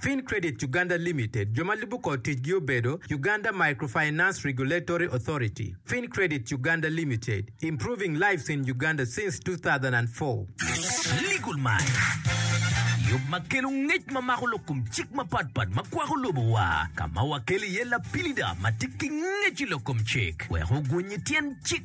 Fin Credit Uganda Limited, jo ma lubo kor ticgi obedo, Uganda Microfinance Regulatory Authority, Fin Credit Uganda Limited, improving lives in Uganda since 2004. Legal Minds, yub ma kelo ngec ma mako lok kom cik mapatpat ma kwako lobowa, ka ma wakelo iye lapilida ma tye ki ngec i lok kom cik wek ogony i tyen cik.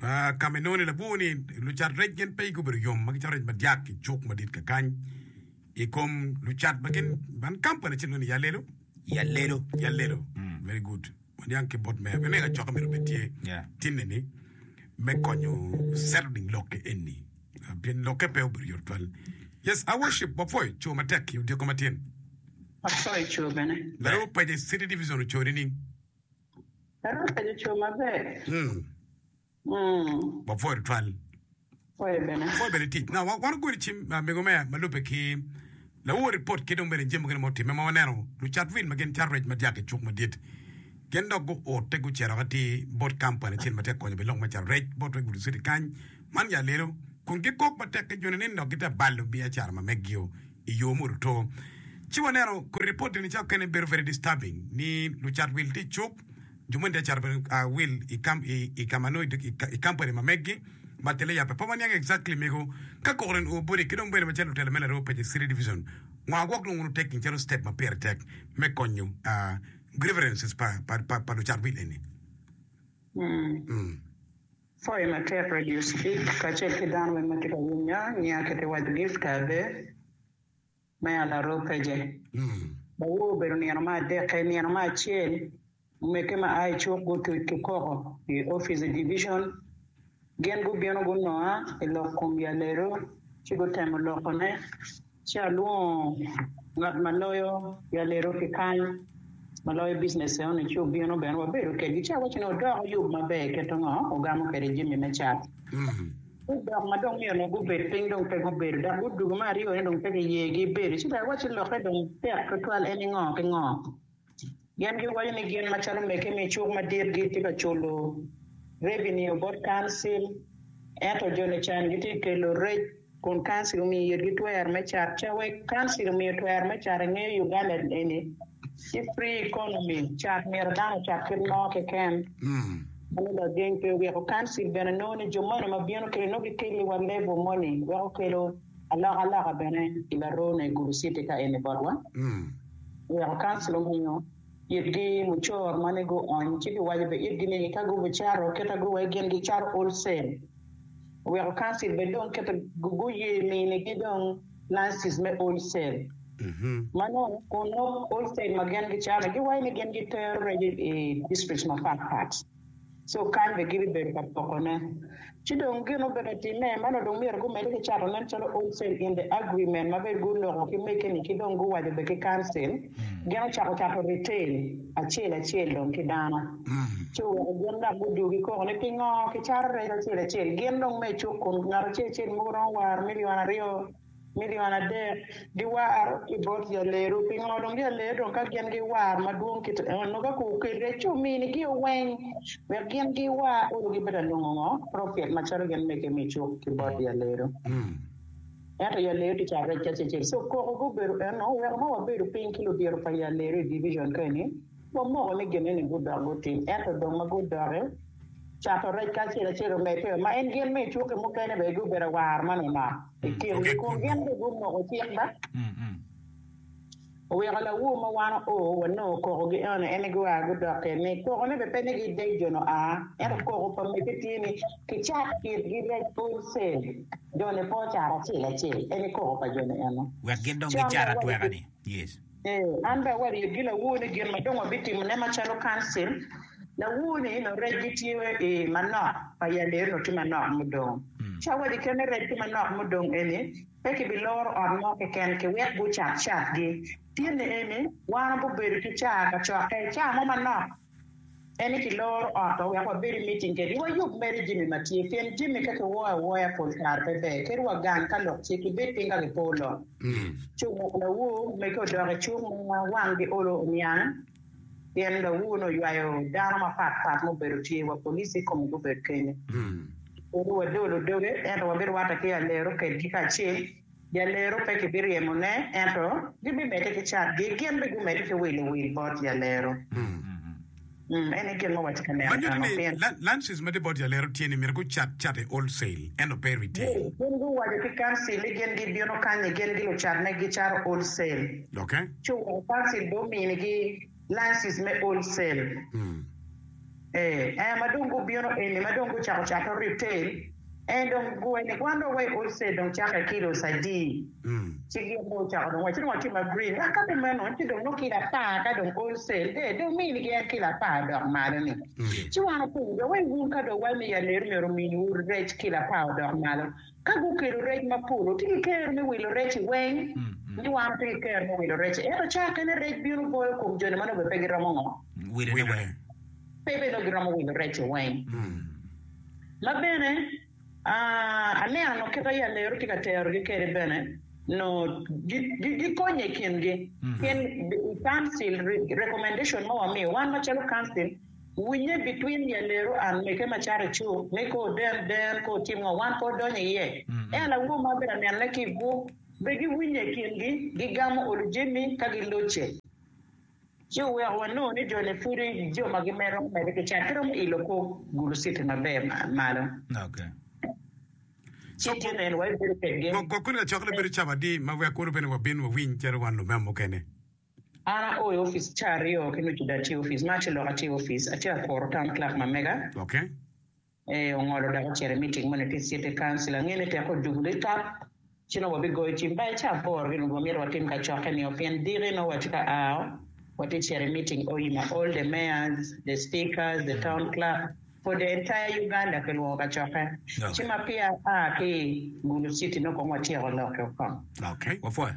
Ka ma inongo ni labwor ni lucat rec gin pe gubedo yom ma gicato rec madyak i cuk madit kakany i kom lucat ma gin man kampani acel ni Yalelo. Yalelo. Yalelo. Very good. Waniang ki bot meya. Meya coka mito bed tye. Yeah. Tinne ni me konyo settling lokke enni. Ah, Pien lokke pe obedo yot twal. Yes, I worship wapwoyo co matek ki odiko matyen. Apwoyo co bene. Laro paja i City Division ocoo nining? Ero penyo co maber. Mm. Mm. Wapwoyo tutwal. Pwoyo bene. Pwoyo bene tic. Na wa- wan ogweli cim ah, mego me ma lube ki lawo ripot ki dong bene jami mukene ma otimme ma waneno lucat wil ma gin cat rec ma dyaka icuk madit gin dok guote gucito ka ti bot kampani acel ma tye ka konyo bene lok me cato rec bot rec bulusiti kany man ya lelo kun gikok matek ki joni ni dok gitye ka balo biacara ma megio i yo muruto. Ci waneno kodi ripot eni ca okene bedo very disturbing ni lucat wil tye icuk, jo moni tye ka cato bene wil i ka ma nongo i kampani ma meggi ma kelle yape. Pe waniang exactly mego ka koko nongo o body ki dong bene macalo lutela me Laroo Paci City Division nwa gwok nongo wunu taking calo step ma pire tek me konyo grievances pa lucat wil eni. Coyo matek Radio Street kacel ki dano weng ma tye ka winyo ngiya kite waco Gift Abe me Alaroo Peje. Bawor obedo nino ma adekke, nino ma acel omege ma a i cuk gutuc ki koko i opic Division. Gin gubino gunonga i lok kom Yaleru ci gutemo lokone. Ci alwongo ngat ma loyo Yalero ki kany ma loyo bicnece onu ci obino bene wabedo kedgi ci awacci ni odoko yub maber iketo ngo ogamo kede jami me cat ci dok ma dong myero gubed piny dong pe gubedo dok gudugo me aryo ni dong pe ki yegi bedo ci dong awacci lokke dong tek tutwal en ni ngo ki ngo. Gin giwaco ni gin macalo mege me icuk madit gitye ka culo revenue bot council ento joni can gitye ka kelo rec kun council omiyo itgi twero me cat ca wek council omiyo twero me cat ingeyo Uganda eni tye free economy cat myero dano ocat kit mo keken meno lageng pe oweko council bene nongo ni jo moni ma bino kene nongo gikeli wa level moni weko kelo alokaloka bene ilaroo ne Gulu city ka eni botwa. Weko kansila omiyo itgi mucoro ma ni guony ci giwaco be itgi ni ka gubi caro keta gu wek gin gi caro Olsen. Weko kansil be dong keta gu guye mini gi dong Nazis me Olsen. Ma nongo kun nok Olsen ma gin gicano giwaco ni gin gitero reco i districts ma pat pat. ci okany bene gin i bedo pa pokone. Ci dong gin obedo atimme, ma nongo dong myero gumedde ki cato nen calo wholesale in the agreement ma bene guloko ki mege-ni ki dong guwaco bene ki Council, gin ocako cato retail acel acel dong ki dano, ci oweko gin dok gudugi koko ni pingo kicato rec acel acel gin dong me icuk kun ngat acel acel mogo romo war million aryo. Milion adek giwar ki bot jaleru. Pingo dong jaleru dong ka gin giwar madwong kit eno ka ku okelre ci omini gi oweng wek gin giwar olo gi bedo anongo ngo profit macalo gin mege me cuk ki bot jaleru. Ento jaleru ti ca rec acecel so koko gubedo eno oweko ma wabedo piny ki ludiro pa jaleru i division ka eni wamoko ni gin eni gudok gutim ento dong ma gudoki cato rec ka acel acel omedde ma en gin me cuk ki mukene bene gubedo awar manonok. i kingi, kun gin dong gumoko cik ba. Oweko lawu ma wan oo wanongo kokogi eno ene gua gudok kede ni, Kokone bene pe ni gidec jo nua, ento koko pa mege tye ni, Kicat kitgi rec wholesale, jone pe ocat acel acel, ene koko pa jone eno. Wek gin dong gicat atweka-ni. Ee, an bene awarye gi lawu ni gin ma dong wabitimone macalo Kancil, lawu-ni nongo recgi tye i manok pa Yaleyo nongo tye manok mudong. Ci awaco kene rec tye manok mudong eni, pe kibiloro ot mo keken ki wek gucat catgi. Tyeni eni wan wabibedo ki caa kacokke, caa mo manok. En ni kiloro ot-to wek wabed i miting kedi, wayub mere jami ma tye, pien jami ka kiwoyo awoya pol kare pe ber, kadi wagang ka lok tye, kibed piny ka kipo lok. Cung wek lawu mege odok i cung ma wanggi olo oniang, pien lawu-ni oywayo dano mapat pat ma obedo tye wa police i kome gubedo kenyo. Kadi wadolo doge, ento wabiruwatte ki alero kedgi kacel. Jalero pe kibiryemone, ento gibimedde ki catgi, gin bene gumedde ki wilo wil bot jalero. Eni aye kit ma watye ka neno Manyodi tano ni, piny. lunches ma tye bot jalero tye ni myero gucat cat i wholesale, ento pe i retail. Gin guwaco ki kancil ni gin gibino kany ni gin gilucat megi gicato wholesale, Doki. ci oweko kancil bene ominigi. Lysis me old cell ee ma dong gubino eni ma dong gucako cato retail ee dong guwe ni wan dong wa i old cell dong cakke ki ilo sadii ci gin dong ocako dong wa ci dong watye ma green wa ka kumeno ci dong nongo kilo apar ka dong old cell ee dong mini gi en kilo apar odok malo ni ci wan openyo jo wai wun ka dong wamiyo aleri myero omini wu rec kilo apar odok malo Ka gukelo rec mapol, watye ki kero me wilo rec-ci weng ni wan watye ki kero me wilo rec-ci. Ento ca kene rec bino boyo kom jo-ni ma nongo bene pe giromo ngo? Wilone weng. Pe bene nongo giromo wilo rec-ce weng. Ma bene, aneno nongo kit aye alero tye ka terogi kwede bene, nongo gikonye i kingi. Pien i Council, recommendation ma wamiyo, wan macalo Council, Winye bitwin ya leru an meke ma caro icuk ni ko den den ko otim ngo wan ko odonyo iye en awo ma abedo aneno ne ki igwok be gi winye ikin gi gi gamo olu jemi ka gi locce ci oweko wa nongo ni joni pudi jo ma gi mero mede ki cat ki romo ilo ko gulu citi ma ber malo ci tye neno wa ibedo kwed gi. Gwok gwok kuni lacok lebedo cabo adi ma wek kuru bene wa bin wa winy calo wan lumeo mukene. An ako i ofice caa aryo ki nucu dok atye ofice. March lok atye ofice. Atye akoro town clerk ma mega. Okay. Ee, ongolo dok ocito i meeting moni ki city council. Angene teke ojugu litap ci nongo wabigoyo cim ba i caa aboro gin wamito watim kacokke nio pien diki nongo watye ka ao watye cito i meeting oii ma all the mayors, the speakers, the town clerk for the entire Uganda kilwongo kacokke. Ci ma peya aa ki i gulu city nongo kong watyeko lokke woko. Okay, wapwoyo.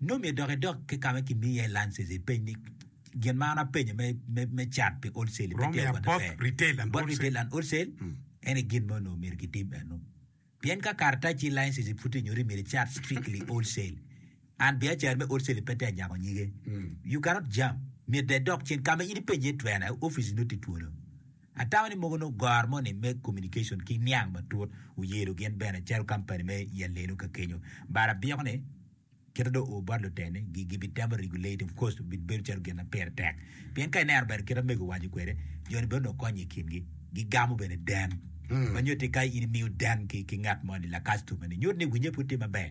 Nongo omyero dok idog ki ka ma kimiyi iye license ipeny ni gin ma an apenyo me cat pi wholesale me tero kwede fair bot retail and wholesale ene gin ma onongo myero kitim eno pien ka karataci license pud tye nyuto ni myero icat strictly wholesale and biacara me wholesale pe tek nyako nyige you cannot jump myero dong idok cen ka ma in ipenyo iye twene office nongo tye twolo. Atamo ni mogo nongo goro moni me communication ki niang matut oyelo gin bene calo company me i alelo ka kenyo. But abiko ni kite dong oo bot luteni gi gi bi temo regulate of course bi bedo calo gin ma pire tek pien ka ineno bene kite mego owaco kwede joni bene onongo konye i kingi gi gamo bene den ma nyuti ka in imiyo den ki, ki ngat moni la customer ni nyuti ni winye pud tye maber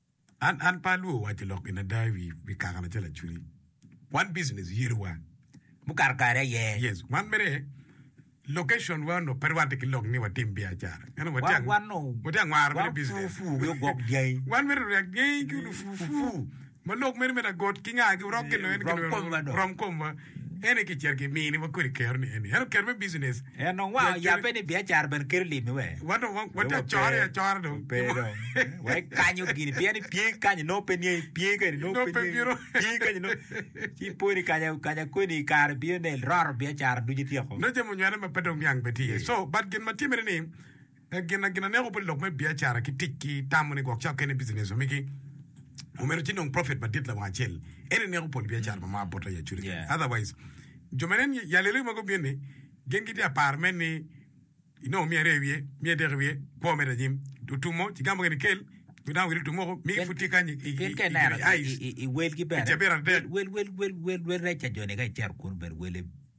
An, an pe alwor waco lok gin ada i wi, wi kaka lacen lacuni. Wan business yerowa. Mukato kare aye. Yes, wan mere location wa onongo pe rwatte ki lok ni watim biacara. Ento watye Wan, ang- wan nongo, watye angwaro mere wan business. fufu ki ogwok dyangi. Wan mere oryak dyangi ki olufufu. Fufu. Ma lok mere me lagot ki ngagi orok gin Ee, en gin rom komwa dong. rom komwa. Eni ki cito ki mini wa kodi kero ni eni. Ento kero me business. En dong wa oyabe ni biacara bene kelo limi we. Wa dong wa tye acore acora dong. Wa pe dong. Wa ikanyo gini pien ni pye kanyo nongo pe niye pye kani nongo pe niye. Pye kanyo nongo. Ci ipo ni kanya kanya kweni kare biyo nel roro biacara ducu ityeko. Nongo jami onywene ma pe dong niang bene tye iye. So but gin ma timere ni. Pe gin na gin aneko pi lok me biacara ki tic ki tamo ni gwok cawa kene bicinec omigi. Omyero ci nong prophet madit lawang acel en eneko pol biacara ma maa bota i acude kene. Otherwise, jo ma nen i alelo ma gubin ni, gin gitye ka paro men ni inongo miyo aryo i wiye, miyo adek i wiye, kwo medo anyim. Otumo, ci gamo gene kel, jo dano wire otumo woko, migi pud tye kany i Gin ka ineno i eyes. i welgi bene, Cabit adek. wel, wel, wel, wel, wel, wel reca joni ka icito kunu bene wele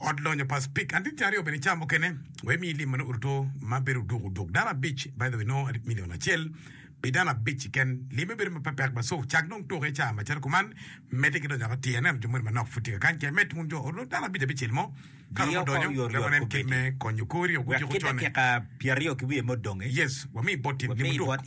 Ot lonyo pa Speke adit ki aryo bene i caa mukene wa imi lim manongo duto ma bedo oduk oduk dano abic by the way nongo adit million acel pi dano abic keken limme bedo ma pepek ba so cak dong tuke caa macalo kuman medde ki donyo ka tii aneno jo moni manok pud tye ka kany kec med wun jo ot dano abic abicel mo ka romo donyo wek wanen kit me konyo kori oguco ki dakika pyeraryo ki wiye ma odongi yes wami bot in lim oduk.